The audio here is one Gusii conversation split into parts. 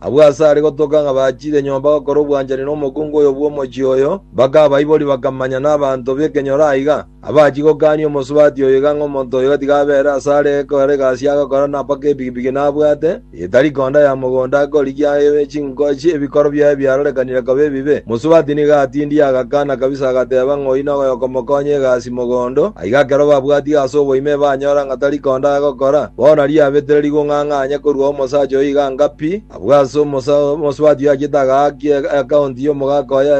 Abwo aase are gotoka ng'a bachire nyomba gokora obwanchani nomokungu oyo bw'omochie oyo, bakabaiboria, bakamanya nabaanto b'ekenyoro aiga, abachie gokania omosubati oyo iga ng'a omonto oyo gatiga abeere asare ekogera egasi agokora na mpaka epigipigi nabwate, etari konda ya mogondo akorigia chinkochi ebikoro biaye biarorekanire koba ebibe. Mosubati nigo atindie agakana kabisa agateba ng'oino oyo okomokonya egasi. mogondo, aiga ekero babwati ase oboime ebanyora ng'a tari konda gokora, bono riabetire rigung'ang'anya korwa omosacha oyo iga anga pi, abwo ase omosubati oyo achiete agaaki eakaonti y'omogaka oye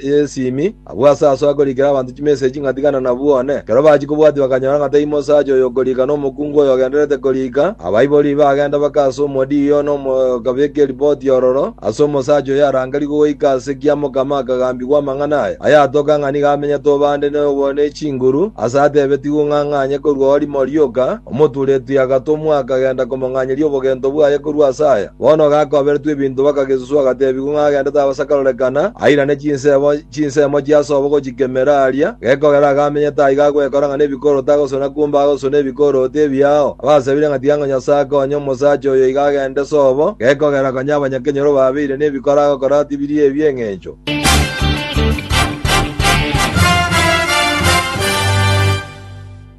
y'esimi, abwo ase aso akorikera abanto chimeseji ng'a tigana nabwo one. Ekero bachia kobwati bakanyora ng'a tei mosacha oyo okorika nomokungu oyo ogendererete korika, abaibori bagenda baka ase omodiyo one okabeka eripoti ororo, Ase omosacha oyarangerigwe goika ase kiamokama akagambigwa amang'ana aya, ayatoka ng'a nigo amenyete obande noyogo ne chinguru, aase atebetigwe ng'a ang'anye korwa orimo rioka, omoturetwi agatomwa akagenda komong'anyeria obogento bwaye korwa ase aya. Bono gakoberetwe ebinto bakagesuswa agateebigwa ng'a agendete abasakarorekana, airane chinsemo, Chinsemo chiasoa gochikemera aria, gekogera agamenyete aiga agwekora ng'a nebikoroti agosuna kumbe agosuna ebikoroti ebiao. Abasabire ng'a tiga ng'a Nyasae akonye omosacha oyo iga agende sobo, gekogera konya abanyakenyoro babeire nebikoro agokora ati biria ebi'engencho.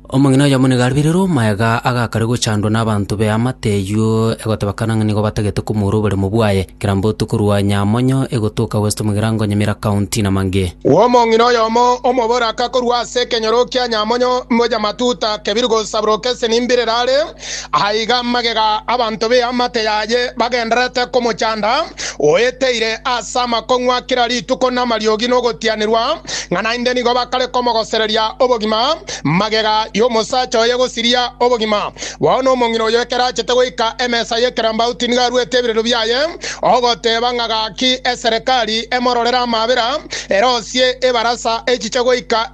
Omong'ina oyomo nigo aribirie omoegaa agakare gochandwa nabanto b'eamate eyio, egoteba kana ng'a nigo batagete komoura oboremo bwaye, kera mbotu korwa Nyamonyo egotoka West Mugirango Nyamira County na mangĩ. Omong'ina oyomo omoboraka korwa ase ekenyoro kia Nyamonyo, Mojamatuta, Kebiru gosaburoka esenimbirero are. Aiga magega abanto b'eamate yaye bagendererete komochanda, oeteire ase amakong'wa kera rituko namariogi nogotianerwa, ng'a naende nigo bakare komogosereria obogima, magega y'omosacha oye gosiria obogima. Bono omong'ina oyo ekero achete goika emesa y'ekerambauti nigo aruete ebireru biaye, ogoteba ng'a gaki eserekari emororere amaabera, erosie ebarasa echiche goika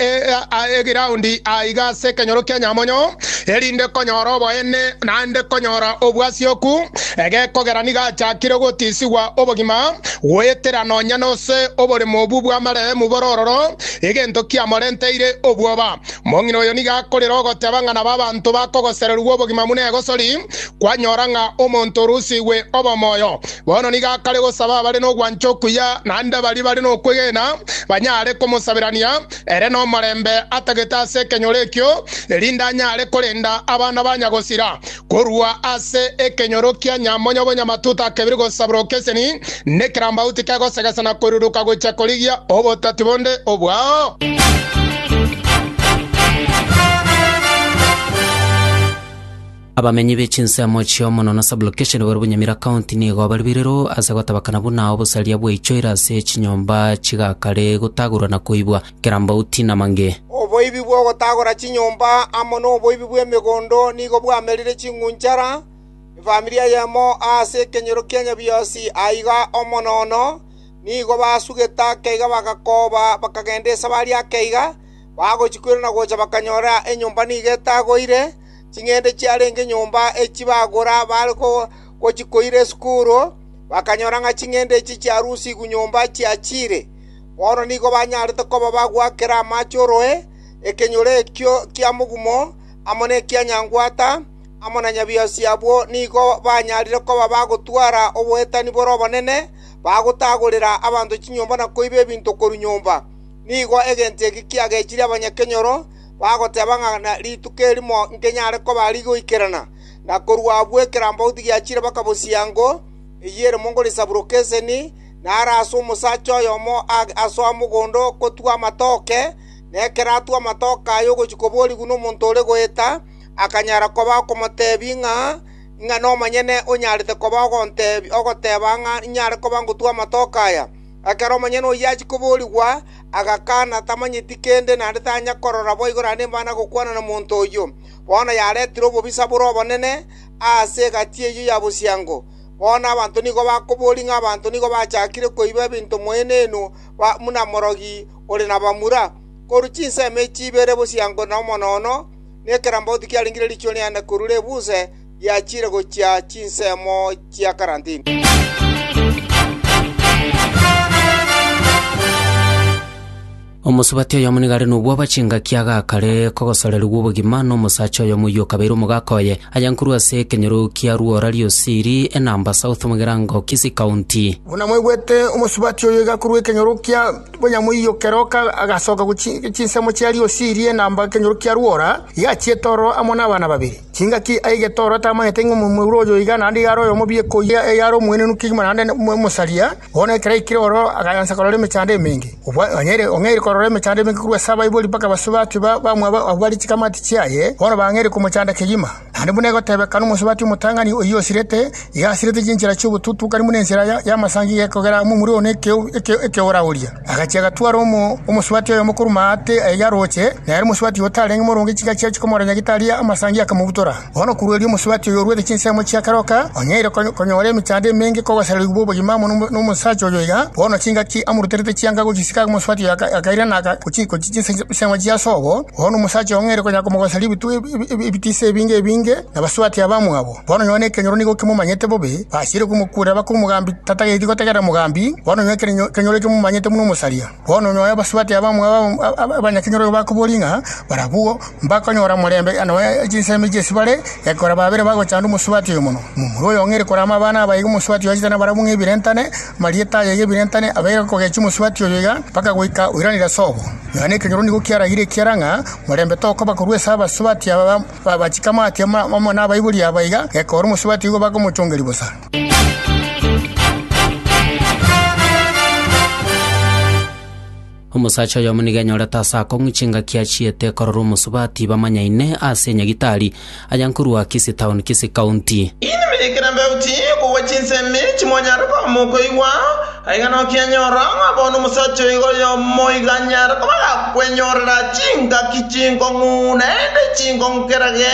egiraundi aiga ase ekenyoro kia Nyamonyo, erinde konyora oboene naende konyora obwasioku, egekogera nigo achakire gotisigwa obogima, goetera nonya nose oboremo obwo bw'amarehemu bore ororo, egento kiamorenteire obwoba. Mong'ina oyo nigo akorera ogoteba ng'a nabo abanto bakogosererigwa obogima buna egosori kwanyora ng'a omonto orusigwe obomoyo. Bono nigo akare gosaba abare nogwancha okuya naende baria bare nokwegena banyare komosaberania, Ere nomorembe atagete ase ekenyoro ekio, erinde anyare korenda abana ba nyagosira korwa ase ekenyoro kia Nyamonyo-bonye-Amatuta akebire gosaborwa okeseni nekerambauti kegosegesa na koiruruka gochia korigia obotati bonde obwao. Abamenyi be chinsemo chi'omonwa na sublokesheni bare Bunyamira County nigo bare birero ase gotabakana buna obosaria bwaichoire ase chinyomba chigakare gotagurwa na koibwa, kerambauti na mange. Oboibi bw'ogotagora chinyomba amo noboibi bw'emegondo nigo bwamerire ching'unchara efamiri eyemo ase ekenyoro kia Nyabiosi aiga omo nono nigo basugete akeiga bagakoba bakagenda esabari akeiga bagochikwera na gocha bakanyora enyomba nigo etagoire, Ching'ende chiarenge nyomba echi bagora bare gochikoira esukuru, bakanyora ng'a ching'ende echi chiarusigwe nyomba chiachiire. Bono nigo banyarete koba bagwakera amache oroe, ekenyoro ekio kia mogumo, amo nekia nyangwata, amo na nyabiasi abwo nigo banyarire koba bagotwara oboetani bore obonene, bagotagorera abanto chinyomba na koiba ebinto korwa nyomba. Nigo egento eke kiagechirie abanyakenyoro, bagoteba ng'a na rituko erimo nkenyare koba rigoikerana, na korwa abwo ekerambauti giachire bakabosiria ngo, eyio ere mongo risaburoke eseni, na are ase omosacha oyomo asoa mogondo okotwa amatoke, na ekero atwa amatoke aye ogochia koborigwa nomonto ore goeta, akanyara koba okomotebi ng'a, Ing'ana omonyene onyarete koba ogoteba ng'a inyare koba ngotwa amatoke aya? Ekero omonyene oyio achia koboorigwa, agakana, tamanyeti kende, naende tanya korora boigo naende mba nagokwana na monto oyio. Bono yaretire obobisa bore obonene aase egati eyio ya bosiango. Bono abanto nigo bakoboria ng'a abanto nigo bachakire koiba ebinto moenenu buna morogi ore nabamura, korwa chinsemo echi ibere bosiango na omonono, na ekerambaoti kiarengire riichuni aende korure ebuuse, giachire gochia chinsemo chia karantini. Omosubati oyomo nigo are nobwabo ase engaki agakare kogosorerigwa obogima nomosacha oyomo oyio okabeire omogaka oye, aya nkorwa ase ekenyoro kia Rwora Riosiri, Enamba South, Mugirango, Kisii County. Buna mwaigwete, omosubati oyo iga korwa ekenyoro kia Bonyamoiyo keroka agasoka gochia chinsemo chia Riosiri, Enamba, ekenyoro kia Rwora, iga achiete ororo amo nabana babere. Chingaki aige Toro atamanyete ng'a omomura oyo oiga naende iga are oyomobe ekoiya eyare omoenenu kegima naende omosaria. Bono ekero aikire oro aganyansa korora emechando emenge. Ong'aire korora emechando emenge korwa ase abaibori mpaka abasubati bamwabo abwo bare chikamati chiaye, bono bang'aire komochanda kegima. Naende buna egotebeka nomosubati omotang'ani oyio osirete, Igasiretwe chinchera chi'obotutukani buna ensera y'amasangi gekogera amo omorweo na ekeora oria. Agachia agatwara omosubati oyomo korwa maate ayio arooche, na ere omosubati oyo otarenge moronge chiga chiaye chikomoranya gitari amasangi akamobutora. Bono korwa erio omosubati oyo orwete chinsemo chi'akaroka onyaire konyora emechando emenge kogosererigwa bw'obogima amo nomosacha oyo iga. Bono chingaki amoruterete chianga gochisiika omosubati oyo akairana gochia chinsemo chia sobo. Bono omosacha oyo ng'aire konya komogosereria ebitiisa ebinge ebinge nabasubati abamwabo. Bono nyoo nekenyoro nigo kimomanyete bobe, basiire komokuurera bake omogambi tatageti gotegerera mogambi, bono nyoo ekenyoro eke momanyete buna omosaria. Bono nyoo abasubati aba abanyakenyoro igo bakoboria ng'a barabwo mbakonyora omorembe nabo chinsemo echi ase bare, gekora babere bagochanda omosubati oyo mono. Momura oyo ng'ere kore amabana aba iga omosubati oyo achete nabarabwo ng'ebirentane, amarieta aye iga ebirentane abaire kogechia omosubati oyo iga, mpaka goika oiranire ase obo. Nyoo nekenyoro nigo kiaragire ekiara ng'a morembe tokoba korwa ase abasubati aba. Babachika mwake amo nabaibori aba iga, gekora omosubati igo bakomochongeria bosa. Omosacha oyomo nigo enyorete ase akong'u chingaki achiete korora omosubati bamanyaine ase enyagitari aya nkorwa Kisii Town, Kisii County. Inwe mwaikera embeo chii okogwa chinsemi chimonyare komokoigwa. Aiga nokenyorwa ng'a bono omosacha oiga oyomo iga anyare koba agakwenyorera chingaki chinkong'u, naende chinkong'u kera ge,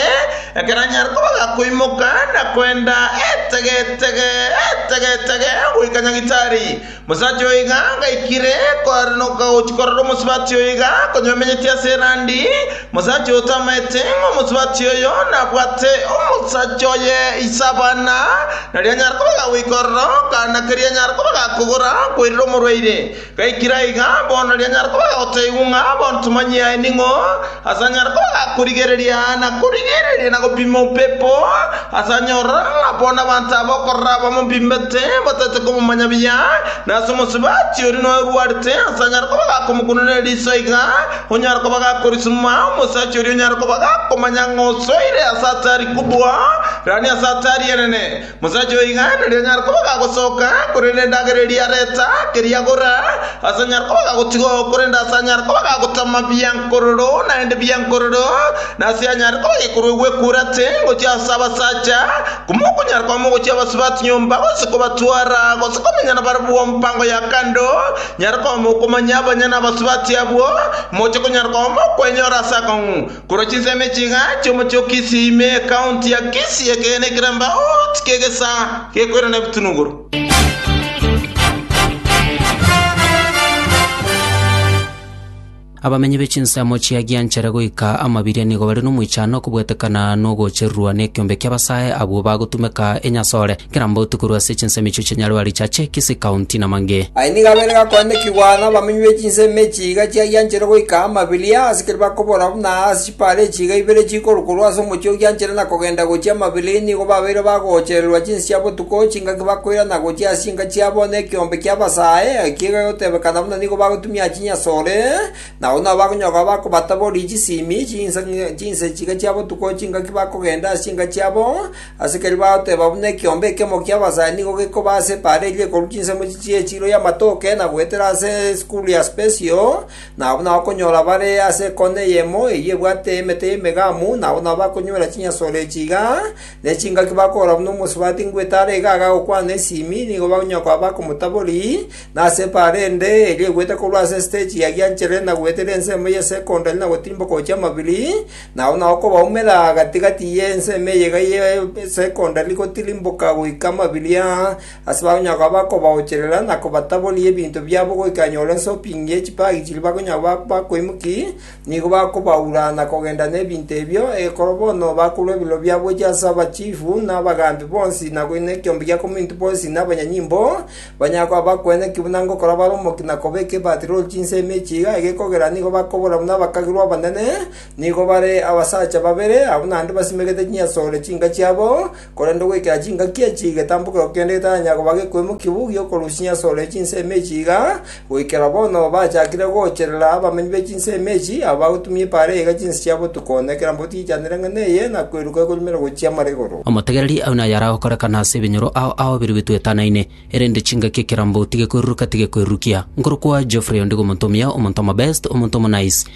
ekero anyare koba agakoimoka na koenda etegetege etegetege goika nyagitari. Omosacha oiga ngaikire koaranoka gochia korora omosubati oiga, konye omenyeti ase erandi, Omosacha oyo tamaete ng'a omosubati oyo nabwate omosacha oye ise abana, nario anyare koba gagoika ororo, kana keria anyare koba gakogora koirera omorwaire. Gaikire aiga, bono nario anyare koba gagoteigwa ng'a bono tomanyie aye ning'o, ase anyare koba gakorigereria na korigereria na gopima opepo, ase anyorora ng'a bono abanto aba okorora aba mobimbete bataete komomanya buya, na ase omosubati oria noyo orwarete, ase anyare koba gakomokunanera riso aiga, Onyare koba gakorisima omosacha oria onyare koba gakomanya ng'a osoire ase atari kobua, rani ase atari enene. Mosacha oyo oiganeria onyare koba gagosoka, korende endagera eria areta, keria agora, ase anyare koba gagotiga oo, korende ase anyare koba gagotama biankororo naende biankororo, na ase anyare koba gekorwa egwekura ate ngochia ase abasacha, Komokonyara kwao mogochia abasube ase nyomba, gose kobatwara, gose komenya nabarabwo mpango ya kando, nyara koba mokomanya abanyene abasube ase abwo, moche konyara koba mokwenyora ase akong'u. Korwa chinsemo echi iga chi'omochie o Kisii ime ekaunti ya Kisii ekeene ekerambaoti ki'egesaa gekoirana ebitunuguru. Abamenyi be chinsemo chia Gianchere goika Amabiria nigo bare nomoichano okobwetekana nogochererwa nekiombe ki'abasae abwo bagotumeka enyasore kera mbauti korwa ase chinsemo echio chia Nyarwari cha Chekisi, County, Namangi. Aye nigo abeire gakoendekigwa nabamenyi be chinsemo echi iga chia Gianchere goika Amabiria, ase keria bakobora buna ase Bare chiga ibere chikoru korwa ase omochie ogianchere na kogenda gochia Mabirini nigo babeire bagoochererwa chinsia botuko chingaki bakoirana gochia ase chinka chiabo nekeombe ki'abasae, ekiya egegotebekana buna nigo bagotumia chinyasore, na agwo nabo bakonyoka abakobatabori chisimi chinse chiga chia botuko chingaki bakogenda ase chinka chiabo, ase keria bagoteba buna ekeombe ekemo ki'abasae nigo gekoba ase bare eria ekoru chinsemo chichie echiro y'amatoke na goetera ase esukuru ya Spesio, Na abwo nabakonyora bare ase ekona eyemo eyio ebwate emete y'emegamu, nabwo nabo bakonywera chinyasoro echi iga, ne chingaki bakogora buna omosubati ngwe etara iga agaa gokwana esimi, nigo bakonyaa koba bakomotabori, na ase ebaare ende, eria egwete korwa ase esiteji ya Gianchere na goetera ensemo ye Sekondari na gotirimboka gochia Mabiri, na abwo nabo kobaumera gati gati y'ensemo eye iga ye Sekondari gotirimboka goika Mabiria, Ase bakonyara koba bakobaocherera na kobataboria ebinto biabo goika anyore ensoping ye chipagi chiria bakonyara koba bakoimokia, nigo bakobaura na kogenda nebinto ebio, ekero bono bakorwa ebirero biabo gochia ase abachifu, na abagaambi bonsi, na koina ekeombe gia kominto bonsi, na abanyanyimbo, banyare koba bakoena ki buna ngokora bare omokia na kobeka ebaati rori chinsa emechie iga, egekogera nigo bakobora buna abakagirwa abanene, nigo bare abasacha babere, abwo naende basimegete chinyasore chinka chiabo, Korende ogoikera chingaki echi egetambokero kende getaranyara koba gekoimokia bobe gi'okorusia ase ore chinsemo echi iga, goikera bono bachakire goocherera abamenyi be chinsemo echi, aba bagotumia epaara eye iga chinse chia botuko, na kera mboti yechanera eng'ana eye, na kweruka ekonyumera gochia amara igoro. Omotegereri aune aye aragokorekana ase ebinyoro ao aoberio bituetanaine, erende chingaki ekera mboti gekoiruruka tigekwerurukia. Nkorokwa Geoffrey ondigo omonto omuya, omonto omobest, omonto omonaiss.